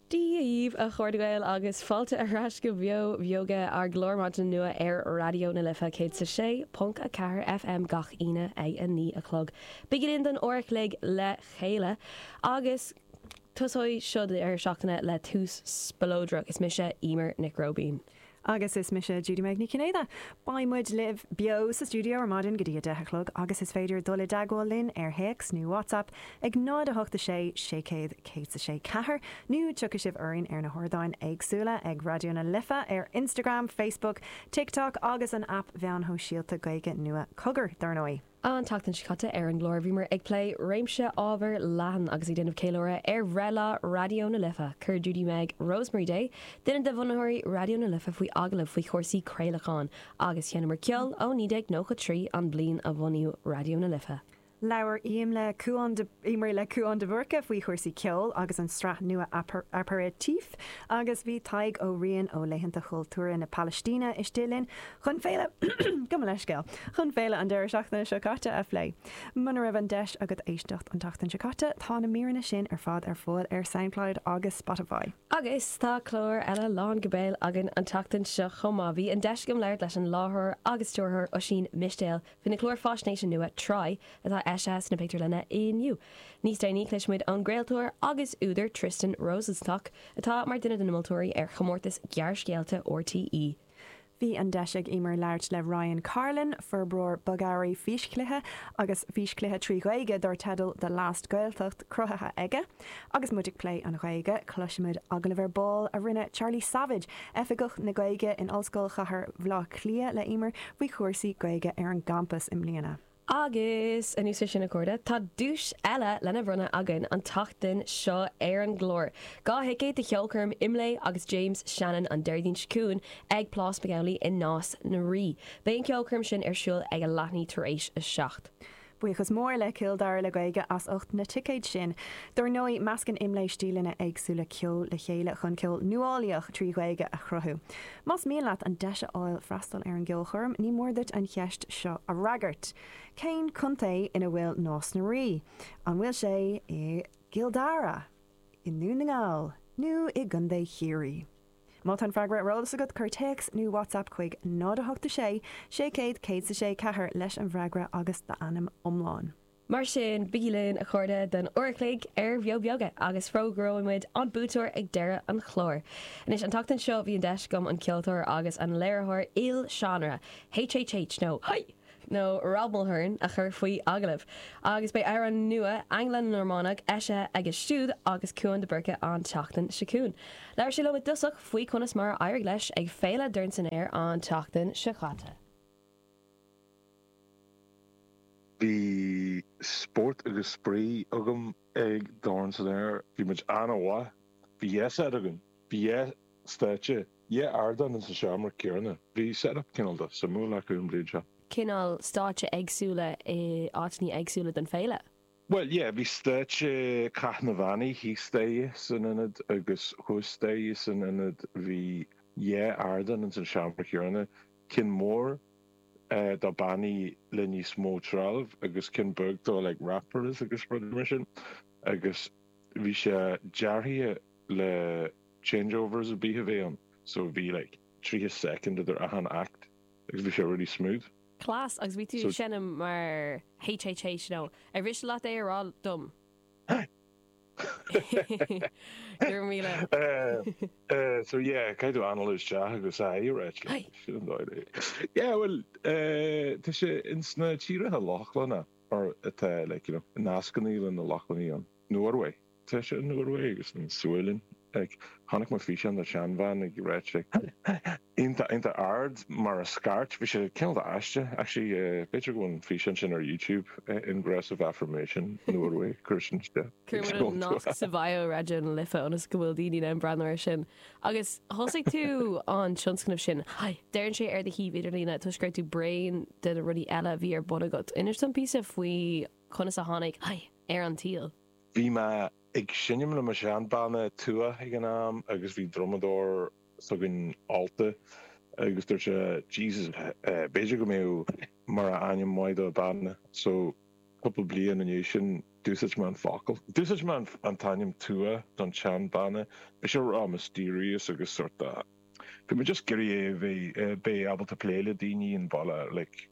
Dia dhaoibh, a chairde Gael, agus fáilte ar ais go Beo Beoga, ár gclár maidine nua ar Raidió na Life 106.4 FM gach Aoine ag a naoi a chlog. Bígí linn don uair a chloig le chéile agus tosóidh seo deireadh seachtaine le tús spleodrach. Is mise Emer Nic Róibín. Agus is mise Judy-Meg Ní Chinnéide. Beidh muid libh beo sa stiúideo ar maidin go dtí 10 a chlog agus is féidir dul i dteagmháil linn ar théacs nó WhatsApp ag 0 8 6 600 106 4 nó tiocfaidh sibh orainn ar na hardáin éagsúla ag Raidió na Life ar Instagram, Facebook, TikTok agus an aip mheáin shóisialta Gaeilge nua Cogar, dár ndóigh. An tseachtain seo caite ar an gclár bhíomar ag plé réimse ábhar leathan agus ag déanamh ceiliúradh ar bhreithlá Raidió na Life. Chuir Judy Meg Rosemary Day, duine de bhunaitheoirí Raidió na Life faoi agallamh faoi chúrsaí craolacháin agus sheinneamar ceol ó 1993, an bliain a bhunaíodh Raidió na Life. Labhraíomar le Cuán de. Labhraíomar le Cuán de Búrca faoi chúrsaí ceoil agus an sraith nua Aperitif agus bhí Tadhg Ó Riain ó Laethanta Chultúrtha na Palaistíne istigh linn chun féile, gabh mo leithscéal, chun féile an deireadh seachtaine seo caite a phlé. Muna raibh an deis agat éisteacht an tseachtain seo caite tá na míreanna sin ar fad ar fáil ar Soundcloud agus Spotify. Agus tá clár eile lán go béal againn an tseachtain seo chomh maith. Bhí an deis agam labhairt leis an láithreoir agus stiúrthóir Oisín Mistéil Faoina chlár faisnéise nua Try atá eisithe sna pictiúrlanna inniu. Níos déanaí cloisfidh muid ón gcraoltóir agus údar Tristan Rosenstock atá mar duine de na moltóirí ar chomórtas gearrscéalta RTÉ. Bhí an deis ag Emer labhairt le Ryan Carlin, forbróir bogearraí físchluiche agus físchluiche trí Ghaeilge dar teideal The Last Gaeltacht cruthaithe aige. Agus muid ag plé an Ghaeilge, cloisfidh muid agallamh ar ball a rinne Charlie Savage, Oifigeach na Gaeilge in Ollscoil Chathair Bhaile Átha Cliath, le Emer faoi chúrsaí Gaeilge ar an gcampas i mbliana. Agus anuas ar sin, a chairde, tá duais eile lena bhronnadh againn an tseachtain seo ar an gclár, dhá thicéad do cheolchoirm Imlé agus James Shannon an Déardaoin seo chugainn ag Plás McAuley i Nás na Rí. Beidh an cheolchoirm sin ar siúl ag a leath i ndiaidh tar éis a seacht. Buíochas mór le Cill Dara le Gaeilge as ucht na ticéid sin. Dár ndóigh, meascann Imlé stíleanna éagsúla ceoil le chéile chun ceol nuálaíoch trí Ghaeilge a chruthú. Más mian leat an deis a fháil freastal ar an gceolchoirm, ní mór duit an cheist seo a fhreagairt, Cén contae ina bhfuil Nás na Rí? An bhfuil sé i gCill Dara, i nDún na nGall nó i gContae Chiarraí? Má tá an freagra ar eolas agat, cuir téacs nó WhatsApp chuig 0 8 6 600 106 4 leis an bhfreagra agus d'ainm iomlán. Mar sin, bígí linn, a chairde, don uair a chloig ar Bheo Beoga agus fógróidh muid an buaiteoir ag deireadh an chláir. Anois, an tseachtain seo, bhí an deis agam an ceoltóir agus an léiritheoir il-seánra, HHH nó Haigh! nó Rob Mulhern a chur faoi agallamh agus beidh amhrán nua Angla-Normánach eisithe aige siúd agus Cuan de Búrca an tseachtain seo chugainn. Labhair sé liom i dtosach faoi conas mar a éirigh leis ag Féile Dorn San Aer an tseachtain seo chaite. Bhí spórt agus spraoi agam ag Dorn San Aer. Bhí mood an-mhaith. Bhí dhá set againn. Bhí dhá stáitse. Yeah, ardán insa seomra céanna. Bhí setup cineál de suimiúil acu an bhliain seo. cineál stáitse éagsúla in áiteannaí éagsúla don féile? Bhuel, yeah, bhí stáitse Cath na mBannaí thíos staighre san ionad agus thuas staighre san ionad. Bhí, yeah, ardán insan seomra céanna. Ceann mór do bannaí le níos mó treallaimh agus ceann beag do like rappers agus rudaí mar sin. Agus bhí sé dearaithe le. Changeovers a bheith ann so bhí like tríocha soicind idir achan act agus bhí sé really smooth. Class agus bhí tú ag seinm mar HHH you know. Ar mhiste leat é a rá dom? Go raibh míle. Eh so yeah caithfidh tú anall isteach agus aye you're right like Aye. sin an dóigh é. Yeah bhuel eh tá sé ins na tíortha Lochlanna nó atá like you know nascannaí leis na Lochlannaí ann. Norway. Tá sé san Iorua agus sa tSualainn. Chonaic mé físeán de sheanbhean ag ráit iontach iontach ard mar a scairt. Bhí sé cineál de aisteach. Actually b'fhéidir go bhfuil an físeán sin ar Youtube, Ingressive Affirmation, Norway, cuir sin de. Cuirfidh muid an nasc sa bhio Raidió na Life ionas go bhfuil daoine in ann breathnú ar sin. Agus thosaigh tú an tionscnamh sin. Deireann sé ar do shuíomh idirlíne toisc go raibh tú bréan de na rudaí eile a bhí ar bun agat. Inis dom píosa faoi conas a tháinig HHH ar an tsaol. Bhí mé ag seinm le mo sheanbhanna Tuath ag an am agus bhí drumadóir s'againn ólta agus dúirt sé Jesus b'fhéidir go mbeadh mar ainm maith do banna so cúpla bliain i ndiaidh sin d'úsáid mé an focal. D'úsáid mé an t-ainm Tuath don tseanbhanna bhí sé ró mysterious agus sort of bhí mé just ag iarraidh é a bheith beith ábalta plé le daoine ón bhaile like.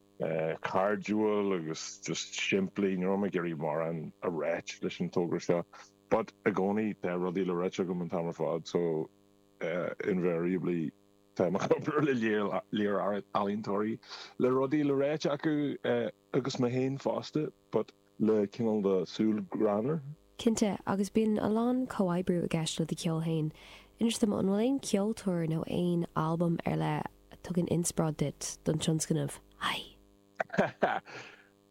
cairdiúil agus just simplí. Ní raibh mé ag iarraidh mórán a ráit leis an togra seo but i gcónaí tá rudaí le ráite agam an t-am ar fad so invariably tá mé ag co-obair le lear ealaíontóirí le rudaí le ráite acu agus mé héin fosta but le cineál de súil greannmhar. Cinnte, agus bíonn a lán comhoibriú i gceist le do cheol féin. Inis dom, an bhfuil aon ceoltóir nó aon albam ar leith a tugann inspioráid duit don tionscnamh? Aidhe!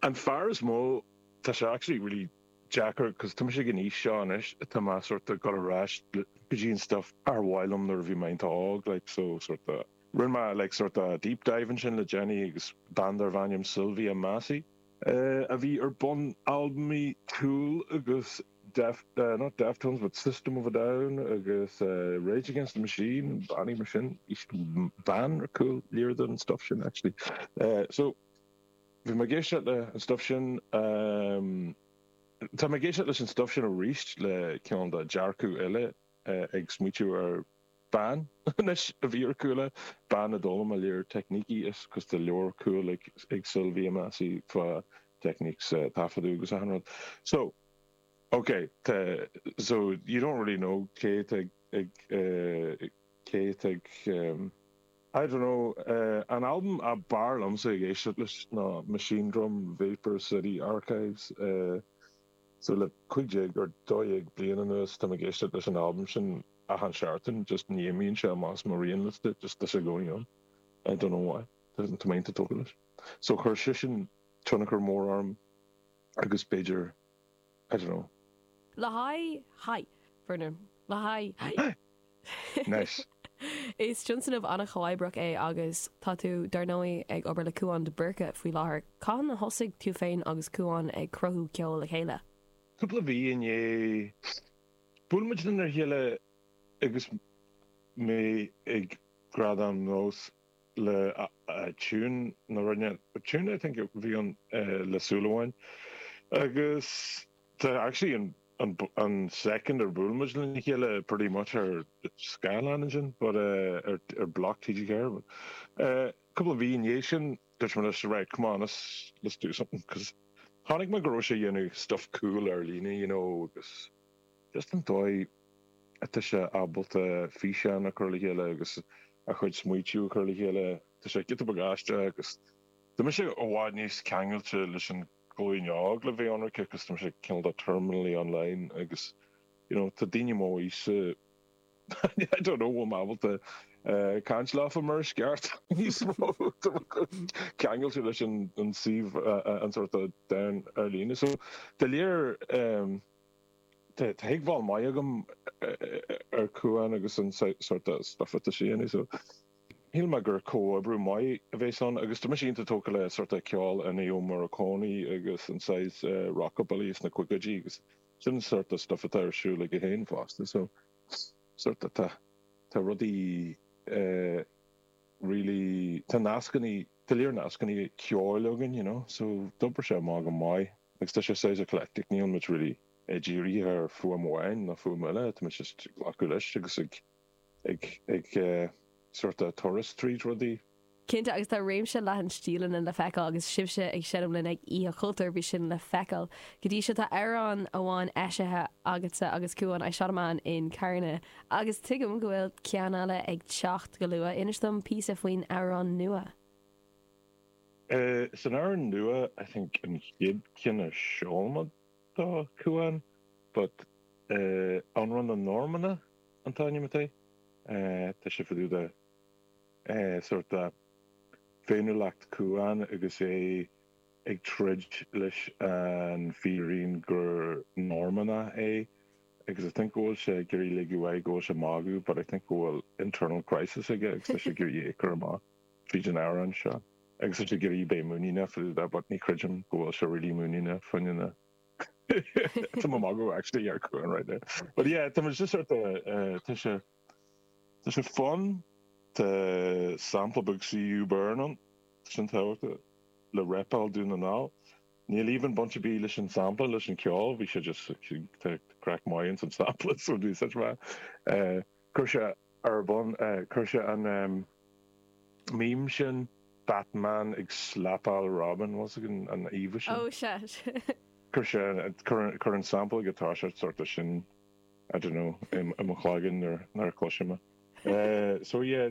An fear is mó, tá sé actually really deacair cos tá mise ag an aois seo anois atá mé sórt of dul ar ais go dtí an stuff ar mhaith liom nuair a bhí mé iontach óg like so sórt of rinne mé like sórt of deep dive ansin le déanaí agus bean darbh ainm Sylvia Massy a bhí ar bun albaimí Tool agus not Deftones but System of a Down agus Rage Against the Machine, bannaí mar sin, bean ar chúl lear den stuff sin actually. So bhí mé ag éisteacht le an stuff sin, tá mé ag éisteacht leis an stuff sin aríst le kinda dearcadh eile ag smaoitiú ar Bean, anois, a bhí ar chúla, bean a d'fhoghlaim mé lear teicnící is cos tá leabhar cool ag ag Sylvia Massy fá techniques taifeadadh agus achan rud. So, ok, tá, so you don't really know cé tá ag cé tá ag ehm. I don't know, eh, an albam ab fhearr liomsa ag éisteacht leis ná Machinedrum, Vapor City Archives, eh. So le cúig déag or dó dhéag bliain anuas, tá mé ag éisteacht leis an albam sin achan seachtain, just ní imíonn sé amach as mo rianliosta, just tá sé i gcónaí ann, I don't know why, tá mé iontach tógtha leis. So chuir sé sin tionchar mór orm agus b'fhéidir, I don't know. le haghaidh, haigh, foirne, le haghaidh, haigh. Anois. Is tionscnamh an-chomhoibreach é agus tá tú, dar ndóigh, ag obair le Cúán de Búrca faoi láthair. Cathain a thosaigh tú féin agus Cúán ag cruthú ceoil le chéile? Cúpla mhí i ndiaidh. Bhuail muid lena chéile agus mé ag Gradaim Nós le tiún a rinne, tiún I think a bhí ann le Súil Amháin agus Tá actually an an second ar bhuail muid lena chéile pretty much ar scáileán ansin but ar ar Bloc TG4 but cúpla mhí i ndiaidh sin dúirt mé leis right come on let's let's do something cos chonaic mé go raibh sé ag dhéanamh stuff cool ar líne you know agus just an dóigh atá sé ábalta físeáin a chur le chéile agus a chuid smaoitiú a chur le chéile tá sé ciotach bagáiste agus tá mise i bhfad níos ceangailte leis an ghlúin óg le bheith ionraic agus tá mise cineál de terminally online agus you know tá daoine m'aoise I don't know bhfuil mé ábalta caint leofa mar is ceart níos mó ceangailte leis an suíomh an sort of domhan ar líne so de léir tá tuigbheáil maith agam ar Cuán agus an sort of stuff atá sé a dhéanamh so Shíl mé gur comhoibriú maith a bheas ann agus tá mise iontach tógtha le sort de cheol Ennio Morricone agus an saghas rockabilly sna caogaidí agus sin an sort de stuff atá ar siúl aige féin fosta so sort de tá tá rudaí really tá nascanna tá lear nascanna ceoil againn you know so d'obair sé amach go maith agus tá sé saghas eclectic níl muid really dírithe ar fuaim amháin nó fuaim eile tá muid just ag glacadh leis agus ag ag sórt turas tríd rudaí. Cinnte, agus tá réimse leathan stíleanna le feiceáil agus sibhse ag seinm linn ag Oíche Chultúir, bhí sin le feiceáil. Go dtí seo tá amhrán amháin eisithe agatsa agus Cuan, I Shot A Man in Carna, agus tuigim go bhfuil ceann eile ag teacht go luath. Inis dom píosa faoin amhrán nua. San amhrán nua, I think an chéad ceann a sheol mé do Cuan, but Amhrán na Normannach. an t-ainm atá air. Tá sé fá dtaobh de sort féiniúlacht Cuan agus é ag troid leis an fírinne gur Normannach é agus I think go bhfuil sé ag iarraidh ligint air go bhfuil sé ag magadh but I think go bhfuil internal crisis aige agus tá sé ag iarraidh é a chur amach tríd an amhrán seo agus tá sé ag iarraidh bheith muiníneach fá dtaobh de but ní chreidim go bhfuil sé really muiníneach faoina Tá mé ag magadh actually ar Cuan right now but yeah tá muid just ar the tá sé tá sé fun tá sampla beag CU Burn ansin tábhachtach le repáil Dún na nGall níl even baint ar bith leis an sampla leis an ceol bhí sé just tá craic maith ins an sampla so bhí such mhaith eh Chuir sé ar bun, chuir sé an meme sin, Batman ag slapáil Robin, bhfuil a fhios agat an íomhá sin? Oh shit. Chuir sé, chuir an sample ag an tús sort de sin, I don't know, i mo chloigeann nuair a chloisim é. So yeah,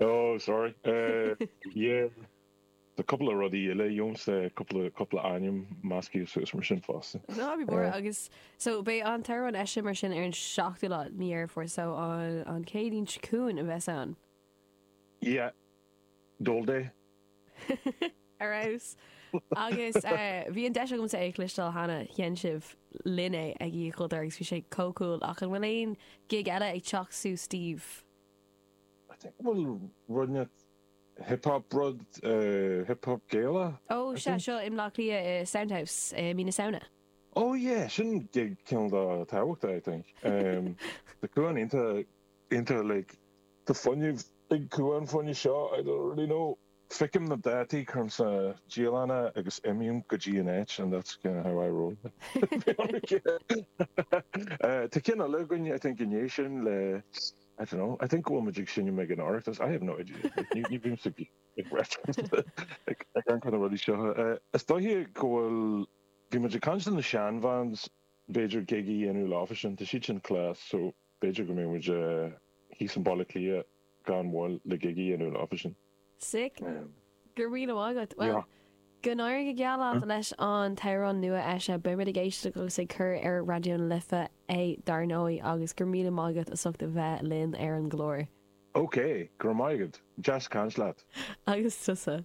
Oh sorry eh yeah tá cúpla rudaí eile agamsa eh cúpla cúpla ainm measctha suas mar sin fosta. Ná bí mór eh. Agus so beidh an t-amhrán eisithe mar sin ar an seachtú lá de mhí Dheireadh Fómhair so an an Céadaoin seo chugainn a bheas ann. Yeah Dul di. ar fheabhas. Agus bhí an deis agamsa é a chloisteáil cheana. Sheinn sibh linn é ag Oíche Chultúir agus bhí sé chomh cool. Ach an bhfuil aon gig eile ag teacht suas daoibh? I think bhfuil roinnt hip hop rud, hip hop Gaelach. Ó sea, seo i mBleá Cliath i Sound House i mí na Samhna. Ó yeah, sin gig cineál de tábhachtach I think. Tá Cuan iontach like. Tá fuinneamh ag cumha an phoinnidh seo, I already know. Feicim na dátaí curm sa dialann agus imím go dtí an áit and that's kind of how I roll. Bhí an rud céanna. Tá ceann eile againn, I think, inné sin le, I don't know, I think go bhfuil muid ag seinm ag an Oireachtas, I have no idea, ní ní bhímse ag ag reference ag ag aon chor na rudaí seo. Is dóiche go bhfuil, bhí muid ag caint le na sean-bhands, b'fhéidir gig a dhéanamh leofa sin, tá siad sin class, so. B'fhéidir go mbeidh muid thíos i mBaile Átha Cliath gan mhoill le gig a dhéanamh leofa fosta. Sick. Go raibh míle maith agat. Bhuel, Yeah. go n-éirí go geal leat leis an t-amhrán nua-eisithe. Beidh muid ag éisteacht agus ag cur ar Raidió na Life é dar ndóigh agus go raibh míle maith agat as ucht a bheith linn ar an gclár. OK, go raibh maith agat. Deas caint leat. Agus tusa.